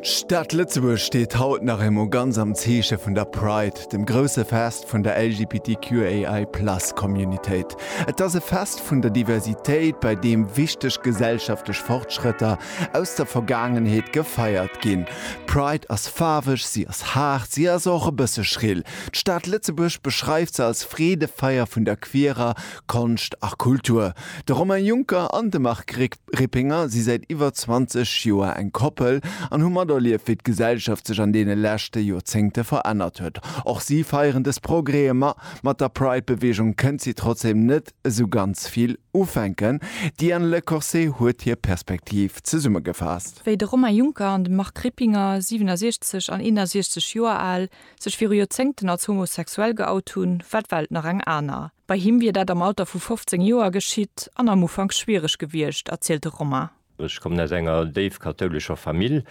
D'Stad Lëtzebuerg steet haut nach eemol ganz am Zeeche vun der Pride, dem grousse Fest vun der LGBTQAI Plus Communitéit. Et ass e Fest vun der Diversitéit, bei deem wichteg gesellschaftlech Fortschrëtter aus der Vergaangenheet gefeiert ginn. D'Pride ass faarweg, si ass haart, si ass och e bësse schrill. D'Stad Lëtzebuerg beschreift se als Freedefeier vun der queerer Konscht a Kultur. De Romain Juncker an de Marc Greg. Rippinger si säit iwwer 20 Joer eng Koppel an hu materlieft, wéi d'Gesellschaft sech an deene leschte Joerzéngte verännert huet. Och si feieren dës Progrèe, ma mat der Pride-Beweegung kënnt si trotzdeem net esou ganz vill ufänken. D'Diane Lecorse huet hir Perspektiv zesummegefaasst. Wéi de Romain Juncker an de Marc Rippinger, 67 an 61 Joer al, sech viru Joerzéngten als homosexuell geout hunn, war d'Welt nach eng aner. Bei him wier dat am Alter vu 15 Joer geschitt an am Ufank schwiereg gewiescht, erzielt de Romain. Ech kommen aus enger déif kathoulescher Famill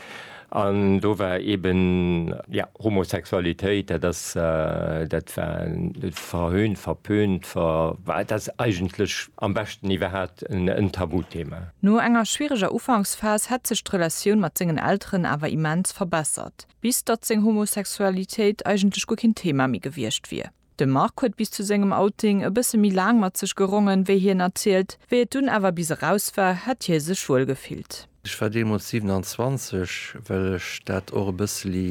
an do war eeben, jo, Homosexualitéit, dat ass, dat war verhöhnt, verpönt, ver, et ass eigentlech am beschten iwwerhat en Tabuthema. No enger schwiereger Ufanksphas hätt sech d'Relatioun mat sengen Elteren awer immens verbessert, bis datt seng Homosexualitéit eigentlech guer keen Thema méi gewiescht wier. De Marc huet bis zu sengem Outing e bësse méi laang mat sech gerongen, wéi hien erzielt. Wéi et dunn awer bis eraus war, hätt hie sech wuel gefillt. Ech war deemools 27, well ech dat och e bësseli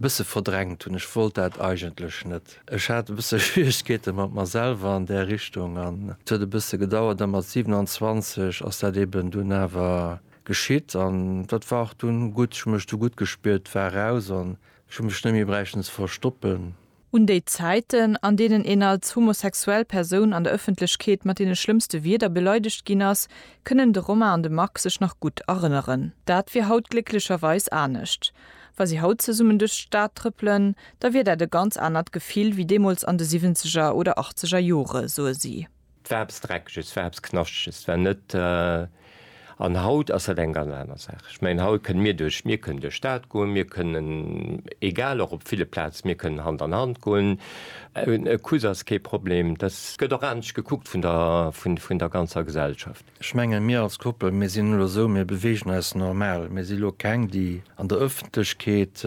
bësse verdrängt hunn. Ech wollt dat eigentlech net. Ech hat e bësse Schwieregkeete mat mer selwer an där Richtung an et huet e bësse gedauert. A mat 27 ass dat eben dunn awer geschitt an dat war och dunn gutt. Ech hu mech du gutt gespiert, war eraus an ech hu mech net méi bräichten ze verstoppen. Un déi Zäiten, an deenen een als homosexuell Persoun an der Ëffentlechkeet mat deene schlëmmste Wierder beleidegt ginn ass, kënnen de Romain an de Marc sech nach gutt erënneren. Dat wier haut glécklecherweis anescht. Wa si haut zesummen duerch d'Stad trëppelen, da wier dat e ganz anert Gefill wéi deemools an de Siwwenzeger oder Achtzeger Jore, soe si. 't war eppes Dreckeges, 't war eppes Knaschtges, 't war net. An haut ass dat eng ganz aner Saach. Ech mengen, haut kënne mir duerch, mir kënnen duerch d'Stad goen, mir kënnen, egal, och op ville Plaze, mir kënnen Hand an Hand goen. E Kuss ass kee Problem. Dat gëtt och anescht gekuckt vun der, vun der ganzer Gesellschaft. Ech mengen, mir als Koppel, mir sinn elo esou, mir beweegen eis normal. Mir si elo keng, déi an der Ëffentlechkeet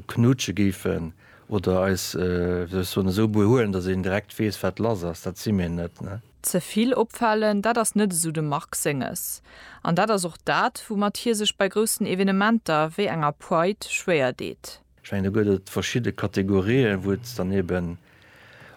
knutsche géifen. Oder eis, wéi soll ech soen, esou behuelen, datt een direkt weess, wat lass ass. Dat si mir net, ne? Ze vill opfalen, dat ass net esou dem Marc Senges. An dat ass och dat, woumat hie sech bei groussen Evenementer wéi enger Pride schwéier deet. Ech mengen, do gëtt et verschidde Kategorien, wou et dann eben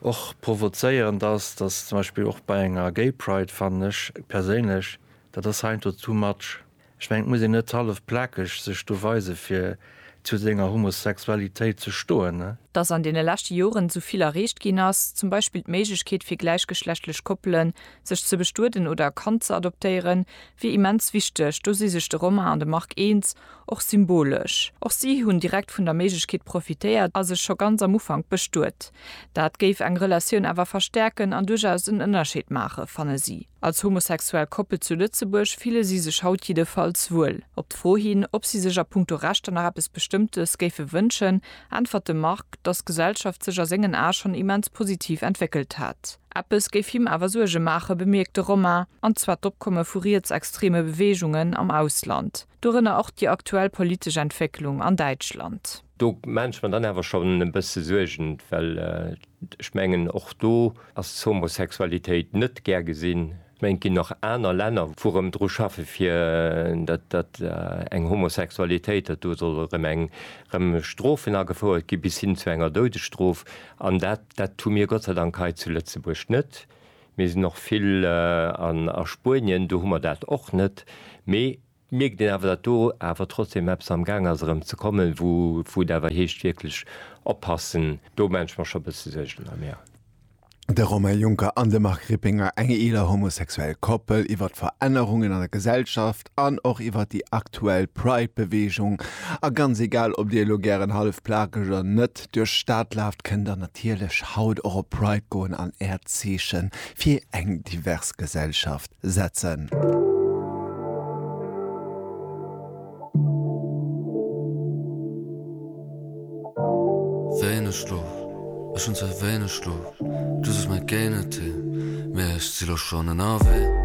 och provozéierend ass, datt zum Beispill och bei enger Gay Pride, fannen ech perséinlech, dat ass heiansdo too much. Ech mengen et muss een net hallef plakeg sech do weise fir zu senger Homosexualitéit ze stoen, ne? Dass an deene leschte Joren esou vill erreecht ginn ass, zum Beispill d'Méiglechkeet fir gläichgeschlechtlech Koppelen, sech ze bestueden oder e Kand ze adoptéieren, wier immens wichteg. Do si sech de Romain an de Marc eens, och symbolesch. Och si hunn direkt vun der Méiglechkeet profitéiert a sech scho ganz am Ufank bestuet. Dat géif eng Relatioun awer verstäerken an duerchaus en Ënnerscheed maachen, fanne si. Als homosexuell Koppel zu Lëtzebuerg fille si sech haut jiddefalls wuel. Op d'Fro hin, ob si sech a punkto Rechter nach eppes Bestëmmtes géife wënschen, äntwert de Marc, dass d'Gesellschaft sech a sengen Ae schonn immens positiv entwéckelt hätt. Eppes géif him awer Suerge maachen, bemierkt de Romain, an zwar d'Opkomme vu rietsextreme Beweegungen am Ausland, dorënner och déi aktuell politesch Entwécklung an Däitschland. Do maan ech mer dann awer schon en bësse Suergen, well ech mengen och do ass d'Homosexualitéit net gär gesinn. Ech mengen et ginn nach aner Länner wou rëm dru schaffen fir dat dat eng Homosexualitéit, dat do soll erëm eng rëm Strofen agefouert gi bis hin zu enger Doudesstrof an dat dat hu mir Gott sei Dank hei zu Lëtzebuerg net. Mir sinn och vill an a Spuenien, do hu mer dat och net. Mee Et mierkt een awer, datt do awer trotzdem eppes am Gaang ass erëm ze kommen, wou et awer heescht wierklech oppassen. Do maache ech mer scho e bësse Suergen erëm, jo. De Romain Juncker an de Marc Rippinger, eng eeler homosexuell Koppel, iwwert d'Verännerungen an der Gesellschaft an och iwwert déi aktuell Pride-Beweegung. A ganz egal, ob Dir elo gären hallef plakeg oder net duerch d'Stad laaft, kënnt der natierlech haut och op Pride goen an Äert Zeeche fir eng divers Gesellschaft setzen. Wéineg Schlof, ech hunn ze wéineg Schlof, du sos mer géi net hin, mee ech si lo schonn ënnerwee.